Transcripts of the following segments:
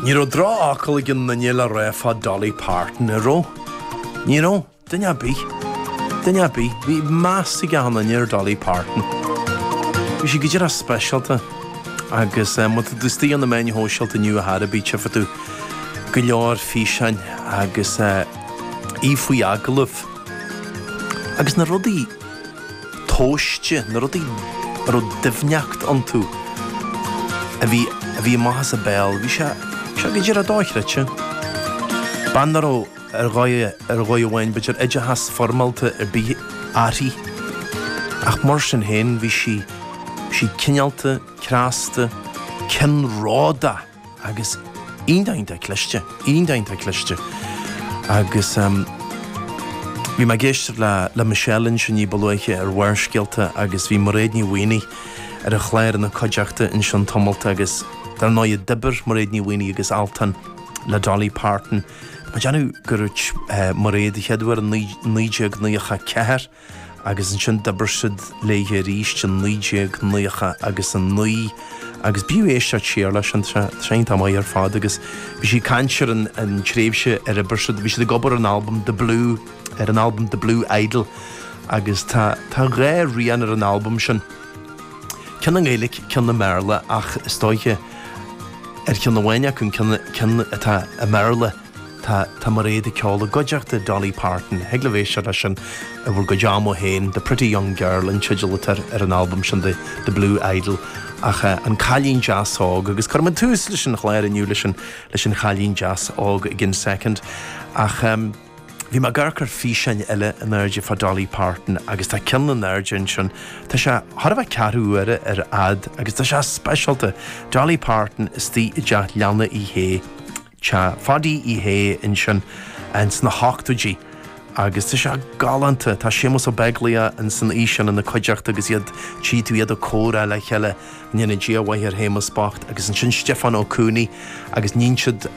Ní raibh drofhocal ag aon nduine le rá fá Dolly Parton, an raibh? Ní raibh. Duine ar bith. Duine ar bith. Bhí meas ag achan nduine ar Dolly Parton. Bhí sí go díreach speisialta agus má tá tú istigh ar na meáin shóisialta inniu a Thara, bí, tífidh tú go leor físeáin agus í faoi agallamh. Agus na rudaí. tomhaiste, na rudaí a raibh doimhneact iontu, a bhí, a bhí ag teacht amach as a béal, bhí sé, bhí sé go díreach dochreidte. Bean nach raibh ar dhóigh, ar dhóigh amháin, b'fhéidir, oideachas foirmeálta ar bith uirthi, ach mar sin féin bhí sí, bhí sí cineálta, cneasta, ceannródaíoch. agus iontach cliste, iontach cliste agus em bhí mé ag éisteacht le, le Michelle ansin ní ba luaithe ar Bharrscéalta agus bhí Mairéad Ní Mhaonaigh ar an chláir ina cuideachta ansin tamalt agus dar ndóigh d'oibir Mairéad Ní Mhaonaigh agus Altan le Dolly Parton. Tá mé ag déanamh gur dúirt eh Mairéad an chéad uair in naoi, naoi déag naocha ceathair, agus ansin d'oibir siad léithe arís in 1999 agus b'fhiú éisteacht siar leis, tréan, tá maith ar fad agus bhí sí ag caint ar an tréimhse ar oibir siad, bhí siad ag obair ar an albam The Blue, ar an albam The Blue Idol agus tá tá dhá rian ar an albam sin, ceann i nGaeilic, ceann i mBéarla ach is dóiche ar cheann amháin acu, an ceann ceann atá i mBéarla, Tá tá Mairéad ag ceol i gcuideachta Dolly Parton. Thig libh éisteacht leis sin i bhur gcuid ama féin. The Pretty Young Girl an teideal atá ar an albam sin, The Blue Idol. Ach eh, an cailín deas óg, agus cuirfidh muid tús leis an chlár inniu leis an, leis an chailín deas óg i gceann second. Ach em, bhí mé ag amharc ar físeán eile in airde fá Dolly Parton agus tá ceann in airde ansin, tá sé thar a bheith ceathrú uaire ar fhad agus tá sé speisialta. Dolly Parton istigh i dteach leanna Uí Shé. Teach Pháidí Uí Shé ansin ins na h-ochtóidí agus tá sé galánta. Tá Séamus Ó Beaglaoich ins an oíche sin ina cuideachta agus iad tchí tú iad ag comhrá le chéile, go ndéana Dia mhaith ar Shéamus bocht, agus ansin Stiofán Ó Cooney agus níonn siad,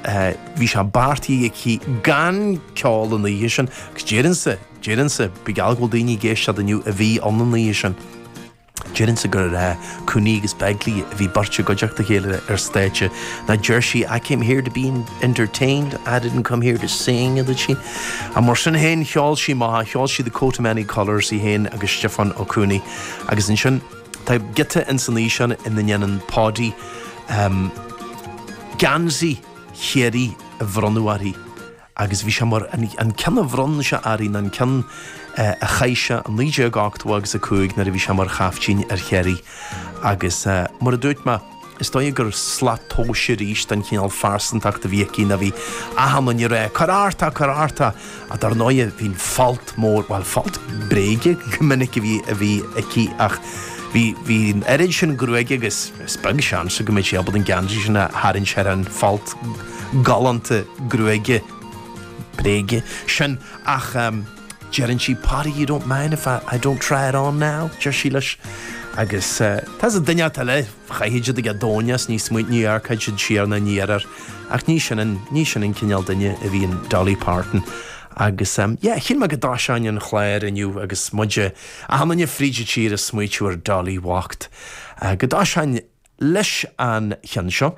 bhí sé beartaithe aici gan ceol an oíche sin agus déarfainnse, déarfainnse, bíodh geall go bhfuil daoine ag éisteacht inniu a bhí ann an oíche sin. Déarfainnse gurbh é Cooney agus Begley a bhí beirt i gcuideachta a chéile ar stáitse. No deir sí 'I came here to be entertained, I didn't come here to sing', a dúirt sí. Ach mar sin féin cheol sí maith, cheol sí 'The Coat of Many Colours' í féin agus Stiofán Ó Cooney. Agus ansin, tá giota ins an fhíseán ina ndéanann Páidí geansaí Chiarraí a bhronnadh uirthi. agus bhí sé mar an ceann a bhronn sé uirthi ná an ceann a chaith sé i 1980 agus 5 nuair a bhí sé mar chaptaen ar Chiarraí agus mar a dúirt mé is dóigh gur slat tomhais arís don chineál phearsantachta a bhí aici ná bhí achan duine ag rá cuir ort é cuir ort é ach dar ndóigh bhí an folt mór bhuel folt bréige go minic a bhí aici ach bhí bhí an oiread sin gruaige agus is beag seans go mbeadh sé ábalta an geansaí sin a tharraingt thar an fholt galánta gruaige bréige sin ach deireann sí Páidí you don't mind if I don't try it on now? deir sí leis agus tá a fhios agat duine inteacht eile chaithfeadh siad ag a dtóin é is níos mó ní amharcfadh siad siar ina ndiaidh air ach ní sin an ní sin an cineál duine a bhí in Dolly Parton agus yeah shíl mé go dtosóinn an clár inniu agus muid achan duine fríd an tír ag smaointiú ar Dolly bhocht go dtosóinn leis an cheann seo.